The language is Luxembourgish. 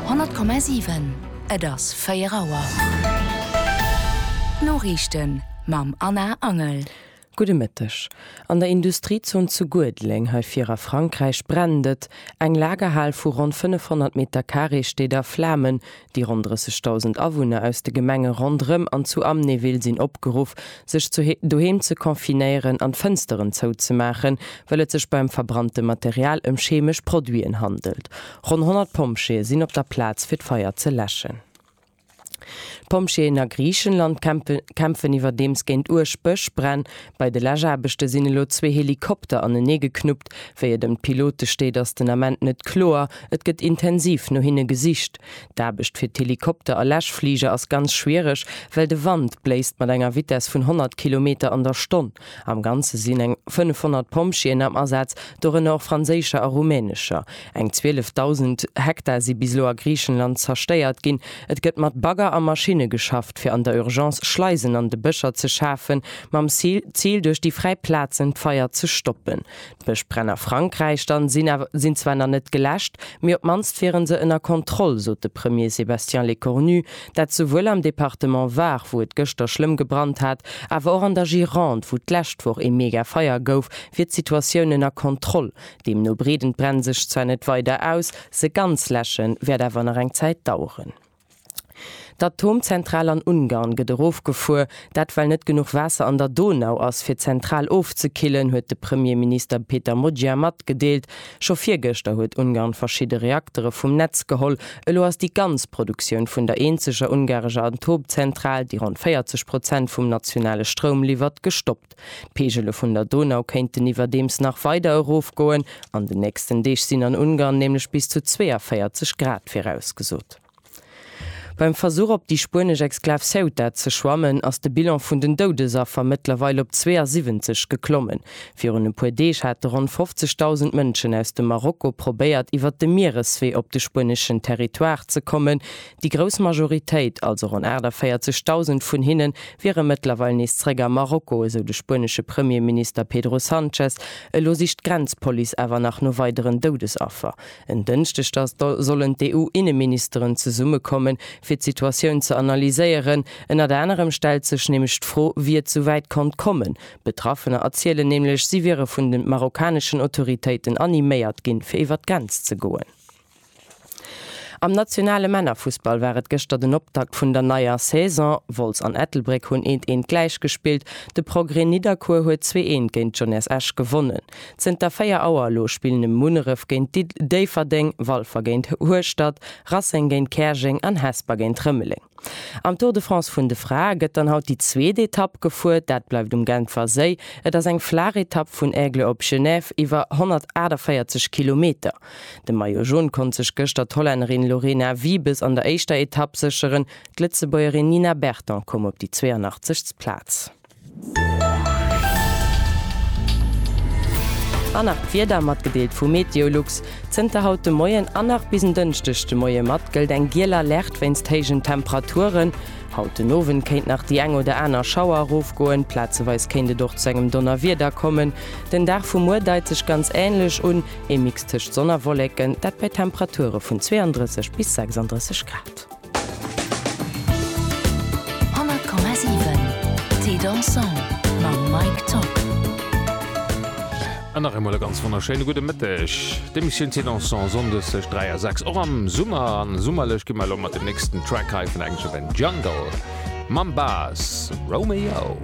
100,7, Et ass 4 Auer. D'Noriichten mam Anna Angel. Gudde Mëtteg. An der Industriezon zu Guedeleng, hei vir a Frankräich, brennt et. Eng Lagerhal vu ronn 500 Meter Carré steet a Flamen, Déi ronn 30.000 Awunner aus de Gemenge ronderëm an zu Amnéville sinn opgeruff, sech zu doheem ze confinéieren an d'Fënsteren zouzemaachen, well et sech beim verbrannte Material ëm chemesch Produiten handelt. Ronn 100 Pompjeeë sinn op der Plaz fir d'Feier ze läschen. D'Pompjeeën a Griichenland kämpfen iwwerdeems géint uerg Bëschbränn, Bei de Läschaarbechte sinn elo zwee Helikopter anenee geknuppt. Wéi et ëm d'Pilote steet, ass den Ament net kloer. Et gëtt intensiv no hinne gesicht. D'Aarbecht fir d'Helikopter a Läschfliger ass ganz schwiereg, well de Wand bléist mat enger Vitess vun 100 Kilometer an der Stonn. Am Ganze sinn eng 500 Pompjeeën am Asaz, dorënner och franséischer a rumänescher. Eng 12.000 Hektar si bis elo a Griichenland zerstéiert ginn. Et gëtt mat Bagger a Maschinne geschafft, fir an der Urgence Schleisen an de Bëscher ze schafen, mam Zil, duerch déi fräi Plazen d'Feier ze stoppen. D'Bëschbränn a Frankräich dann sinn zwar nach net geläscht, mee op d'mannst wiere se ënner Kontroll, sot de Premier Sébastien Lecornu. Dat souwuel am Departement Var, wou et gëschter schlëmm gebrannt hat, awer och an der Gironde, wou d'lescht Woch ee Megafeier gouf, wier d'Situatioun ënner Kontroll. Deemno breeden d'Bränn sech zwar net weider aus, se ganz läsche wäert awer nach eng Zäit daueren. D'Atomzentral an Ungarn gëtt erofgefuer, dat well net genuch Waasser an der Donau ass, fir d'Zentral ofzekillen, huet de Premierminister Peter Magyar matgedeelt. Scho virgëschter huet Ungarn verschidde Reaktere vum Netz geholl. Elo ass déi ganz Produktioun vun der eenzeger ungarescher Atomzentral, déi ronn 40 Prozent vum nationale Stroum liwwert, gestoppt. D'Peegele vun der Donau kéinten iwwerdeems nach weider erofgoen. An den nächsten Deeg sinn an Ungarn nämlech bis zu 42 Grad virausgesot. Beim Versuch op déi spuenesch Exklav Ceuta ze schwammen, ass de Bilan vun den Doudesaffer mëttlerweil op 72 geklommen. Virun e puer Deeg hate ronn 50.000 Mënschen aus dem Marokko probéiert iwwer de Miereswee op de spueneschen Territoire ze kommen. Déi grouss Majoritéit, also ronn 48.000 vun hinne wiere mëttlerweil nees zeréck a Marokko, esou de spuenesche Premierminister Pedro Sanchez. Elo sicht d'Grenzpolice awer nach no weideren Doudesaffer. En Dënschdeg da sollen d'EU-Inneministeren zesumme kommen, fir d'Situatioun ze analyséieren. Ënnert anerem stellt sech nämlech d'Fro, wéi et sou wäit konnt kommen. Betraffener erzielen nämlech, si wiere vun de marokkaneschen Autoritéiten animéiert ginn, fir iwwer d'Grenz ze goen. Am nationale Männerfussball war et gëschter den Optakt vun der neier Saison. Wolz an Ettelbréck hunn eent eent gläich gespillt. De Progrès Nidderkuer huet zwee eent géint d'Jeunesse Esch gewonnen. Zënter 4 Auer elo spillen ëm Munneref géint Déifferdeng, Walfer géint Hueschtert, Rasseng géint Käerjeng an Hesper géint Rëmeleng. Am Tour de France vun de Frae gëtt dann haut déi zweet Etapp gefuert. Dat bleift um Genfer Séi. Et ass eng flaach Etapp vun Aigle op Genève iwwer 148 Kilometer. De Maillot Jaune konnt sech gëschter d'Hollännerin Lorena Wiebes an der éischter Etapp sécheren. D'Lëtzebuergerin Nina Berton koum op déi 82. Plaz. An nach d'Wieder, matgedeelt vu Meteolux. Zënter haut de Moien an nach bis en Dënschdeg de Moie mat gëllt eng giel Alerte wéinst héijen Temperaturen. Haut den Owend kéint nach déi eng oder aner Schauer erofgoen, plazeweis kéint et och zu engem Donnerwieder kommen. Den Dag vu muer deit sech ganz änlech un, ee Mix tëscht Sonn a Wolleken, dat bei Temperature vun 32 bis 36 Grad. 100,7 Thé dansant mam Mike Top. An nach eemol e ganz wonnerschéine gudde Mëtteg. D'Emissioun Thé dansant, sonndes tëscht 3 a 6, och am Summer. A summerlech gi mer elo mat dem nächsten Track hei vun Action Jungle mam Bas Romeo.